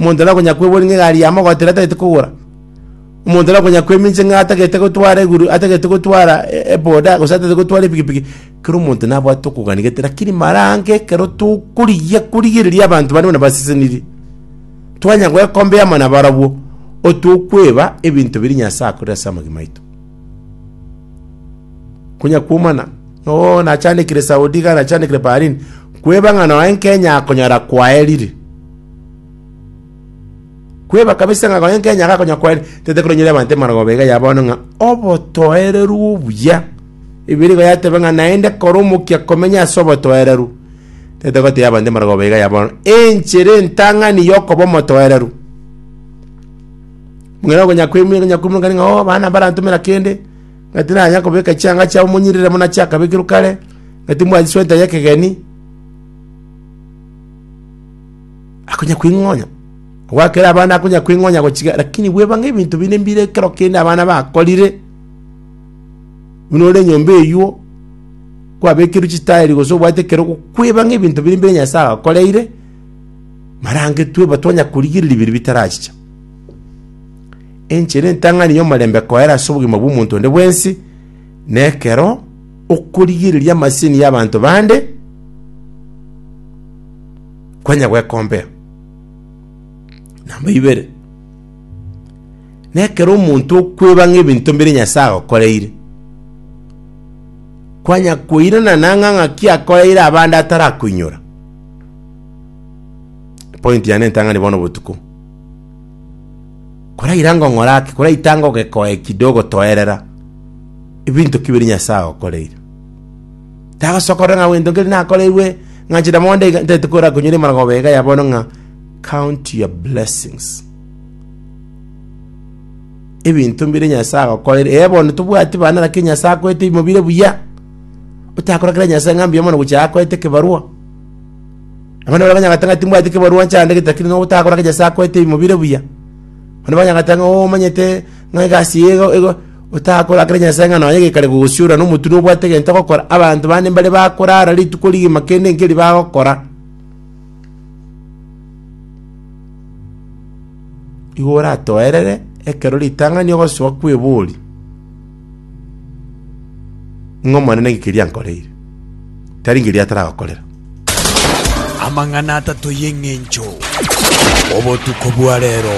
Omonto nakonya kweboria ng'a egari ya mogotera atagete kogora. Omonto nakonya kwemincha ng'a atagete gotwara eguru atagete gotwara e- eboda gose atagete gotwara epikipiki. Kera omonto nabwate okogania gete lakini mara ange ekero tokorigia korigereria abanto bare buna basesenirie, twanya goekombea amo nabarabwo, otokweba ebinto biria Nyasae akorire ase amagima aito. Konya kwomana. Oo nachandekire Saudi iga nachandekire Berlin, kweba ng'a noe nkenya akonyora kwaerire. Kweba kabisa ng'a noe nkenya iga akonyora kwaerire, tete koronyire abanto emarogooba iga ya bono ng'a obotoereru obuya. Ebibelia igo yateba ng'a naende kora omokia komenya ase obotoereru. Tete gotebia abanto emarogooba iga ya bono, enchera entang'ani yokoba omotoereru. Buna okonya koimu- konya koimurekani ng'a oo abana mbarantomera kende, ng'a tinanya kobeka chianga chiabo monyirire buna chiakabekirwe kare, ng'a timwanchi sweta y'ekegeni, akonya kwing'onya. Ogwakere abana akonya kwing'onya gochika, lakini bweba ng'a ebinto binde mbire ekero kende abana bakorire, buna ore enyomba eywo, kwabekirwe chitaeri gose obwate ekero ogokweba ng'a ebinto bire mbire Nyasae agokoreire, marangetwe, but onya korigereria biria bitarachicha. Enchera entang'ani y'omorembe koera ase obogima bw'omonto onde bwensi nekero okorigereria amasini y'abanto bande kwanya gwekombea. Namba ibere, nekero omonto okweba ng'a ebinto mbire Nyasae agokoreire, kwanya koirana nang'a ng'aki akoreire abande atarakoinyora. Point yane entang'ani bono botuko. Koraira ngong'ora ake, koraita ngogekoa eki ndogotoerera, ebinto ki biria Nyasae agokoreire? Tagosoka korora ng'a gento nkeri nakoreirwe, ng'a inche na mondo iga ntaete kora konyora emarogooba ega ya bono ng'a count your blessings. Ebinto mbiria Nyasae agokoreire, ee bono tobwati bana lakini Nyasae akoete ebimo bire buya, otakorakera Nyasae ng'a mbuya mono gochia akoete ekebarua. Abana baria banyagate ng'a timbwati ekebarua nchandegete, lakini ng'a ogotakora ng'a Nyasae akoete ebiimo bire buya. Abana banyagate ng'a oo omanyete ng'a egasi eye igo igo otakora ekero Nyasae ng'a nonye gekare gogosiorora na omotwe nobwate egento ogokora, abanto bande mbare bakorara rituko rigima kende nkeri bagokora. Igo oratoerere ekero ritang'ani ogosoa kw'ebori. ng'a Omonene ninki keria ankoreire, tari nkeria ataragokorera. Amang'ana atato y'eng'encho, obotuko bwa reero.